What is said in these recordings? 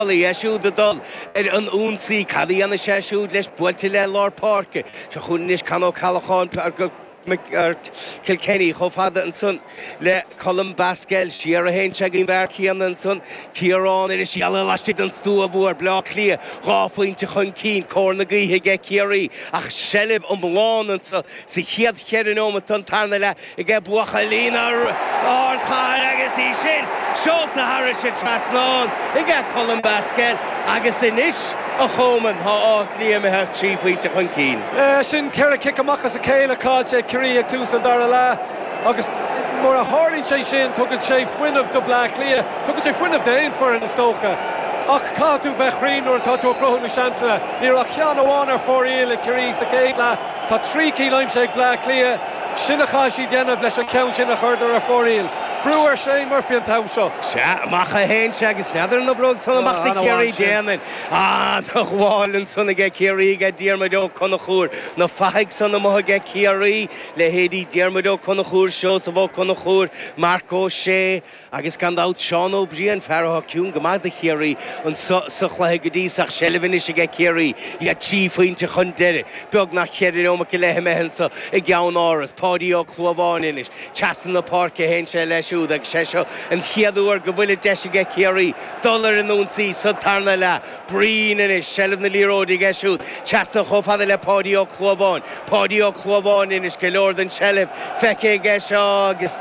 Bhal, é siúd ag dul ar an ionsaí, cad a dhéanfaidh sé siúd leis, buailte le lár páirce. Seo chugainn anois Con Ó Ceallacháin, Kilkenny, chomh fada ansan le Colm Basquel, siar a théann sé go dtí an fear céanna ansan, Ciarán anois, geall leis laistigh den stua mhór, Baile Átha Cliath dhá phointe chun cinn, cóir na gaoithe aige Ciarraí ach seilbh iomlán ansan sa chéad cheithre neomat den tarna leath. aige buachaillí na hardchathrach agus í sin seolta thairis an trasnán aige Colm Basquel agus anois a Choman tá Áth Cliath imithe trí phointe chun cinn. Sin ceithre chic amach as a chéile caillte ag Ciarraí ag tús an dara leath agus nuair a tharlaíonn sé sin tugann sé fuinneamh do Bleá Cliath, tugann sé fuinneamh d'aon foireann is dócha ach caithfidh tú bheith cruinn nuair atá tú ag cruthú na seansanna. Ní raibh ach ceann amháin ar fóraoil ag Ciarraí sa chéad leath. Tá trí cinn aimsithe ag Bleá Cliath, sin a chaithfidh siad déanamh leis an cheann sin a chuireadar ar fóraoil. Brú ar Shane Murphy an t-am seo. Sea, amach a théann sé agus n'fheadar an oibreoidh san amach do Chiarraí. Déanann. Ana bhail ansan aige Ciarraí aige Diarmuid Ó Conchúir. Na fathaigh san amuigh aige Ciarraí, leithéidí Diarmuid Ó Conchúir, Seosamh Ó Conchúir, Marc Ó Sé, Agus gan dabht, Seán Ó Briain, fear atá ciúin go maith do Chiarraí insa chluiche go dtí seo ach seilbh anois aige Ciarraí, iad trí phointe chun deiridh, beagnach cheithre neomat go leith imithe anseo i gCeannáras. Páidí Ó Clúmháin anois, trasna na páirce a théann sé leis siúd agus sé seo an chéad uair go bhfuil an deis aige Ciarraí dul ar an ionsaí sa tarna leath. Briain anois, seilbh na liathróide aige siúd, trasna chomh fada le Páidí Ó Clúmháin. Páidí Ó Clúmháin anois, go leor den tseilbh feicthe aige seo agus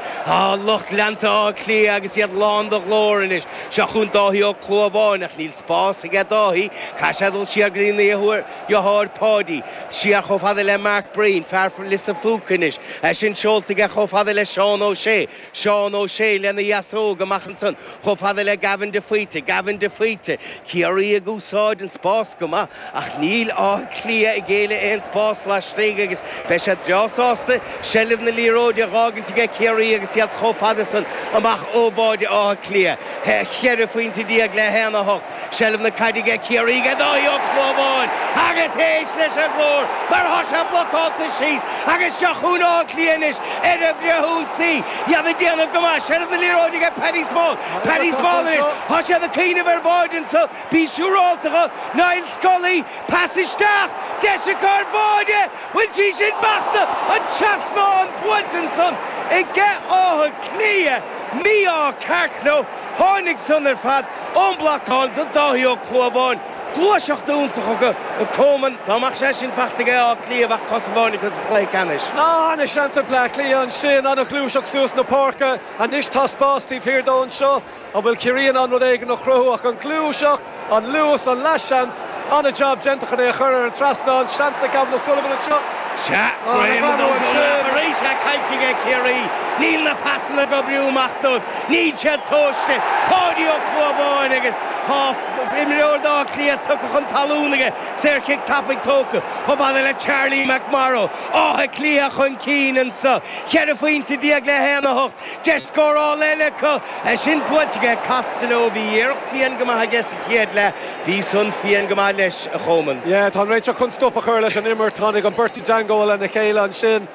lucht leanta Átha Cliath agus iad lán de ghlór anois. Seo chugainn Dáithí Ó Clúmháin ach níl spás aige Dáithí, caithfidh sé dul siar go dtína dheartháir Páidí. Siar chomh fada le Mike Breen, fear Lios an Phúca anois, é sin seolta aige chomh fada le Seán Ó Sé. Seán Ó Sé lena dheasóg amach ansan chomh fada le Gavin de Faoite. Gavin de Faoite, Ciarraí ag úsáid an spás go maith ach níl Áth Cliath ag géilleadh aon spás laistigh agus beidh siad breá sásta seilbh na liathróide a dh'fhágaint aige Ciarraí agus iad chomh fada san amach ó bháide Átha Cliath. 14 phointe le 1, 8. Seilbh na caide aige Ciarraí aige Dáithí Ó Clúmháin agus éist leis an ghlór mar tá sé blocálta síos agus seo chugainn Áth Cliath anois ar an bhfrithionsaí. Iad ag déanamh go maith. Seilbh na liathróide aige Paddy Small. Paddy Small anois. Tá siad ag cuimhneamh ar bháide anseo. Bí siúrálta dhe. Niall Scully. Pas isteach. Deis acu ar bháide. Bhfuil sí sin fachta? An trasnán buailte ansan aige Áth Cliath. Mí-ádh ceart leo. Tháinig san ar fad. An bhlocáil do Dháithí Ó Clúmháin, gluaiseacht iontach acu a Choman, dá mbeadh sé sin faighte aige Áth Cliath bheadh cos amháin acu sa chluiche ceannais. Ana sheans ag Bleá Cliath ansin, ana ghluaiseacht suas na páirce, anois tá spás taobh thiar dó anseo, an bhfuil Ciarraí in ann rud éigin a chruthú ach an gluaiseacht, an luas, an leath seans. An-jab déanta chun é a chur ar an trasnán. Seans ag Gavin O'Sullivan anseo. Sea, greim an fhómhar arís é caillte ag Ciarraí. Níl na pasanna ag oibriú amach dóibh. Níl siad tomhaiste. Páidí Ó Clúmháin agus imreoir d'Áth Cliath tugtha chun talún aige. Saorchic tapaidh tógtha chomh fada le Charlie McMorrow. Áth Cliath chun cinn anseo, cheithre phointe déag le haon a hocht. Deis scórála eile acu. É sin buailte aige Costello. Bhí iarracht fiáin go maith aige sa chéad leath. Bhí san fiáin go maith leis a Choman. Yeah, tá an réiteoir chun stop a chur leis an imirt. Tháinig an beirt i dteangmháil lena chéile ansin.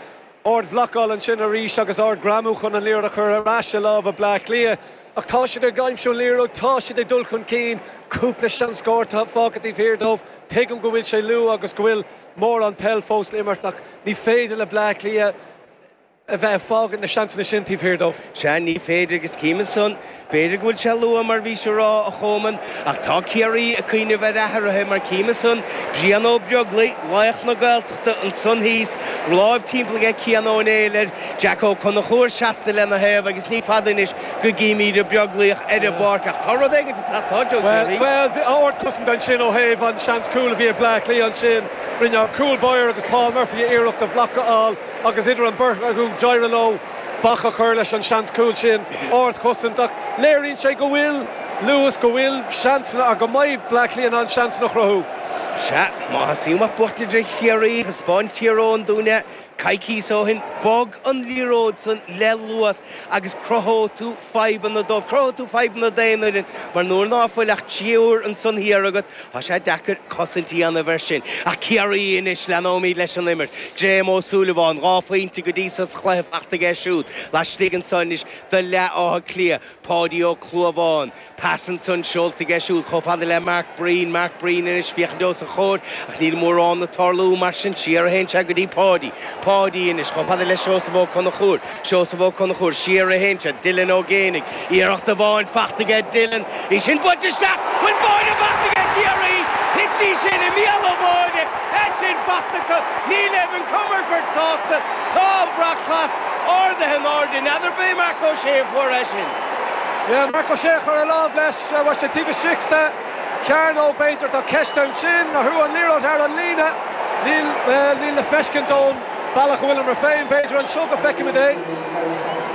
Ard bhlocáil ansin arís agus ard greamú chun an liathróid a chur ar ais i lámha Bleá Cliath. Ach tá siad ag aimsiú an liathróid, tá siad ag dul chun cinn. Cúpla seans scóir atá fágtha taobh thiar dóibh. Tuigim go bhfuil sé luath agus go bhfuil mórán peil fós le imirt ach ní féidir le Bleá Cliath. a bheith ag fágaint na seansanna sin taobh thiar dóibh. Sea, ní féidir agus cím é san. B'fhéidir go bhfuil sé luath mar bhís a rá, a Choman, ach tá Ciarraí ag cuimhneamh ar athruithe mar cím é san, Brian Ó Beaglaoich, laoch na Gaeltachta, ansan thíos, láimh timpeall aige Cian Ó Néill air, Jack Ó Conchúir seasta lena thaobh agus ní fada anois go gcímíd an Beaglaoch ar an bpáirc ach tá rud éigint ag teastáilt ó Chiarraí. Bhuel, bhí ard-cosaint ansin ó thaobh an seans cúl a bhí ag Bleá Cliath ansin. Rinne an cúl báire agus Paul Murphy iarracht an bhloc a fháil. agus idir an beirt acu, d'éirigh leo bac a chur leis an seans cúil sin, ardchosaint, ach léiríonn sé go bhfuil luas, go bhfuil seansanna, ach go mbeidh Bleá Cliath in ann seansanna a chruthú. Sea, má theastaíonn uait buachtaint ar Chiarraí, thaispeáin Tír Eoghain dúinn é, coicíos ó shin, bog an liathróid san le luas agus cruthóidh tú fadhbanna dóibh, cruthóidh tú fadhbanna d'aon fhoireann, mar nuair ná fuil ach triúr ansan thiar agat, Tá sé deacair cosaint a dhéanamh air sin ach Ciarraí anois, leanóimid leis an imirt. Graham Ó Súilleabháin, dhá phointe go dtí seo sa chluiche faighte aige siúd laistigh anseo anois de leath Átha Cliath. Páidí Ó Clúmháin, pas ansan seolta aige siúd chomh fada le Mike Breen. Mike Breen anois, féachaint os a chomhair ach níl mórán ag tarlú mar sin siar a théann sé go dtí Páidí. Páidí anois chomh fada le Seosamh Ó Conchúir. Seosamh Ó Conchúir, siar a théann Dylan Ó Géibheannaigh, iarracht amháin faighte aige Dylan, í sin buailte isteach, bhfuil báire faighte aige Ciarraí, thit sí sin i mbéal an bháire, é sin faighte acu, níl Evan Comerford sásta, tá an brat glas ardaithe in airde, n'fheadar ab é Marc Ó Sé a fuair é sin. Yeah, Marc Ó Sé a chuir a lámh leis, raibh sé taobh istigh sa chearnóg b'fhéidir, tá ceist ansin, nó an liathróid thar an líne, níl le feiscint ón. Bealach a bhfuilimse féin, b'fhéidir anseo go feicimid é.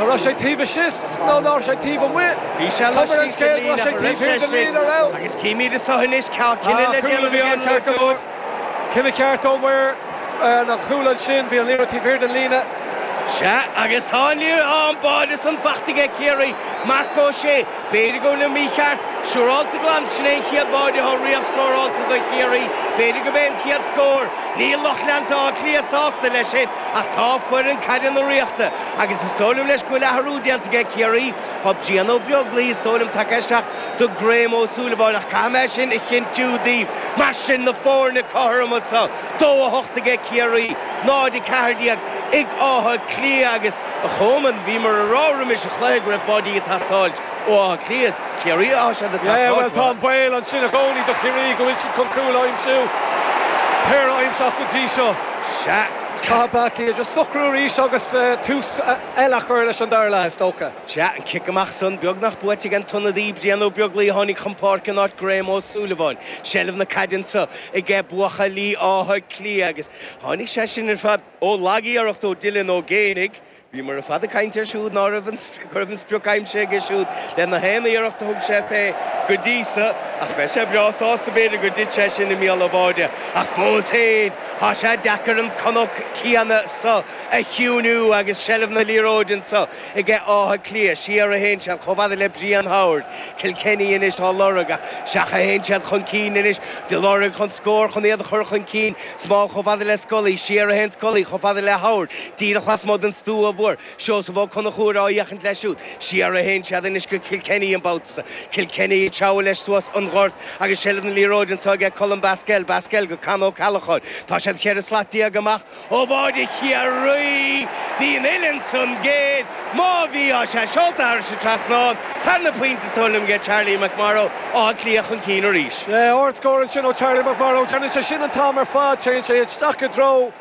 An raibh sé taobh istigh nó ná raibh sé taobh amuigh? Bhí sé Thug mé an laistigh den scéal go raibh líne sé a raibh taobh sé thiar den istigh líne a raibh. agus címid anseo anois cá cinneadh le Cúl a déanamh bhí ag ann an ceart go leor. múinteoir. Cinneadh ceart ó mhaor an chúil ansin. Bhí an liathróid taobh thiar den líne. Sea agus tá an liathróid ann. Báide san fachta aige Ciarraí, Marc Ó Sé. B'fhéidir go bhfuilim mícheart. Siúrálta glan, sin é an chéad bháide atá riamh scórálta do Chiarraí. B'fhéidir gurb é an chéad scór. Níl lucht leanta Átha Cliath sásta leis sin ach tá foireann caide na Ríochta agus is dóigh liom leis go bhfuil athrú déanta aige Ciarraí. Tá Brian Ó Beaglaoi is dóigh liom tagtha isteach do Graham Ó Súilleabháin ach caithfidh mé sin a chinntiú daoibh. Mar sin na foirne cothroma sa dó a hocht aige Ciarraí, 0, 14 ag Áth Cliath agus. A Chomáin, bhíomar a rá roimis an chluiche go raibh báidí ag teastáilt ó Áth Cliath is Ciarraí atá siad ag teastáilt uathu. Tá an baol ansin i gcónaí do Chiarraí go bhfuil siad chun cúil a aimsiú, péire a aimsíodh go dtí seo. Caithfidh Bleá Cliath just socrú arís agus tús eile a chur leis an dara leath, is dócha. Sea, an cic amach san, beagnach buaite ag an t-ionadaí, Brian Ó Beaglaoi a tháinig chun páirce in áit Graham Ó Súilleabháin. Seilbh na caide anseo ag buachallí Átha Cliath agus tháinig sé sin ar fad, Ó lagiarracht ó Dylan Ó Géibheannaigh, bhíomar ar fad ag caint air siúd ná raibh an go raibh an sprioc aimsithe aige siúd le na haon iarracht a thug sé fé go dtí so, ach bheadh sé breá sásta b'fhéidir gur thit sé sin i mbéal an bháide, ach fós féin tá sé deacair an cnoc céanna so a chiúiniú agus seilbh na liathróide anso aige Áth Cliath siar a théann siad chomh fada le Brian Howard, Kilkenny anois á lorg ach isteach a théann siad chun cinn anois, ag lorg chun scór chun iad a chur chun cinn. Small chomh fada le Scully, siar a théann Scully chomh fada le Howard, díreach lasmuigh den stua mhór, Seosamh Ó Conchúir á fhéachaint leis siúd, siar a théann siad anois go Kilkenny an babhta san, Kilkenny ag treabhadh leis suas an ghort agus seilbh na liathróide anseo aige Colm Basquel, Basquel go Con Ó Ceallacháin, tá siad cheithre slat déag amach ó bháide Chiarraí, bhí an uillinn san géar. Má bhí tá sé seolta thairis an trasnán, tarna pointe is dóigh liom aige Charlie McMorrow Áth Cliath chun cinn arís. Sea, ardscór ansin ó Charlie McMorrow, déanann sé sin an t-am ar fad, téann sé isteach i dtreo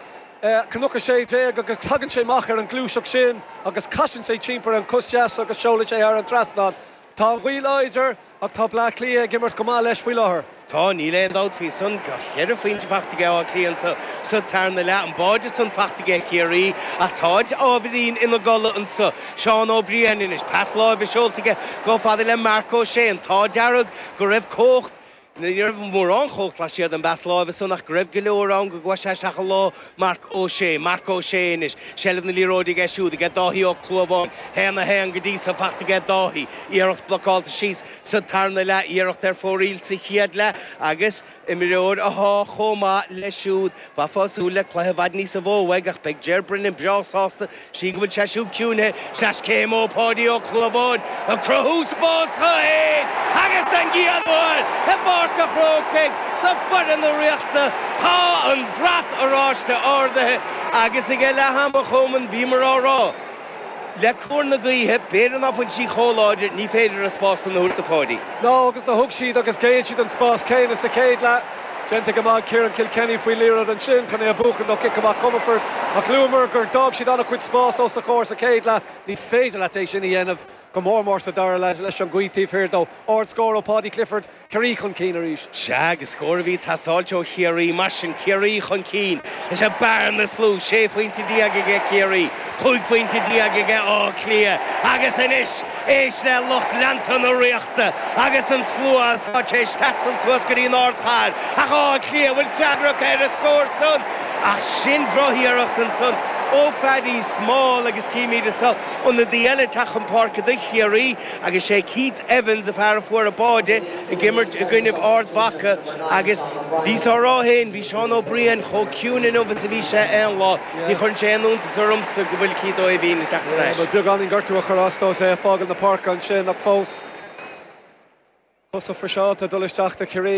Cnoc 16 agus tagann sé amach ar an gluaiseacht sin agus casann sé timpeall ar an cos dheas agus seolann sé thar an trasnán. Tá an ghaoth láidir Ach tá Bleá Cliath ag imirt go maith leis faoi láthair. Tá, níl aon dabht faoi san. Tá cheithre phointe faighte aige Áth Cliath sa tarna leath, an báide san faighte aige Ciarraí. Ach táid ábhairín ina gcodladh anso. Seán Ó Briain anois. Pas láimhe seolta aige chomh fada le Marc Ó Sé. An t-ádh dearg go raibh cumhacht, ní raibh mórán cumhacht laistigh den bpas láimhe san ach go raibh go leor ann go gcuaidh sé isteach i lár Marc Ó Sé, Marc Ó Sé anois, seilbh na liathróide aige siúd aige Dáithí Ó Clúbháin, haon 1 go dtí so faighte aige Dáithí, iarracht blocálta síos sa tarna leath, iarracht ar fóraoil sa chéad leath agus imreoir atá chomh maith leis siúd. Bheifeá ag súil le cluiche i bhfad níosa mhó uaidh ach beidh Ger Brennan breá sásta Sin go bhfuil sé siúd ciúnaithe. Sleaschéim ó Pháidí Ó Clúbháin ag cruthú spás dó fhéin agus don gcéad uair i bPáirc a' Chrócaigh do foireann na Ríochta. Tá an brat oráiste ardaithe agus aige leath ama chomh maith bhíomar á rá, le cóir na gaoithe, b'fhéidir ná fuil sí chomh láidir, ní féidir a spás san a thabhairt do Pháidí. No agus do thug siad agus ghéill siad an spás céanna sa chéad leath. Déanta go maith ag Ciarán Kilkenny faoi liathróid ansin chun é a bhuachan do cic amach Comerford ach luamar gur d'fhág siad an-chuid spás os a chomhair sa chéad leath. Ní féidir leat é sin a dhéanamh, go mór mór sa dara leath leis an ghaoth taobh thiar dó. Ard scór ó Paudie Clifford, Ciarraí chun cinn arís. Sea agus scór a bhí ag teastáilt ó Chiarraí. Mar sin Ciarraí chun cinn. Leis an mbearna is lú, sé phointe déag aige Ciarraí, cúig phointe déag aige Áth Cliath agus anois éist le lucht leanta na Ríochta agus an slua atá tar éis taisteal suas go dtí an Ard Chathair ach Áth Cliath an bhfuil freagra acu ar an scór san ach sin drochiarracht ansan ó Phaddy Small agus címid is ionadaí eile ag teacht chun páirce do Chiarraí. Agus sé Keith Evans, an fear a fuair an báide ag imirt i gcoinnibh Ard Mhacha agus bhíos á rá fhéin, bhí Seán Ó Briain chomh ciúin inniu is a bhí sé aon lá. Ní chuireann sé aon iontas ormsa go bhfuil Keith Ó hÉimhín ag teacht ar ais. Beagáinín gortú a chuir as dó is é ag fágail na páirce ansin ach fós, cosa friseáilte ag dul isteach do Ciarraí.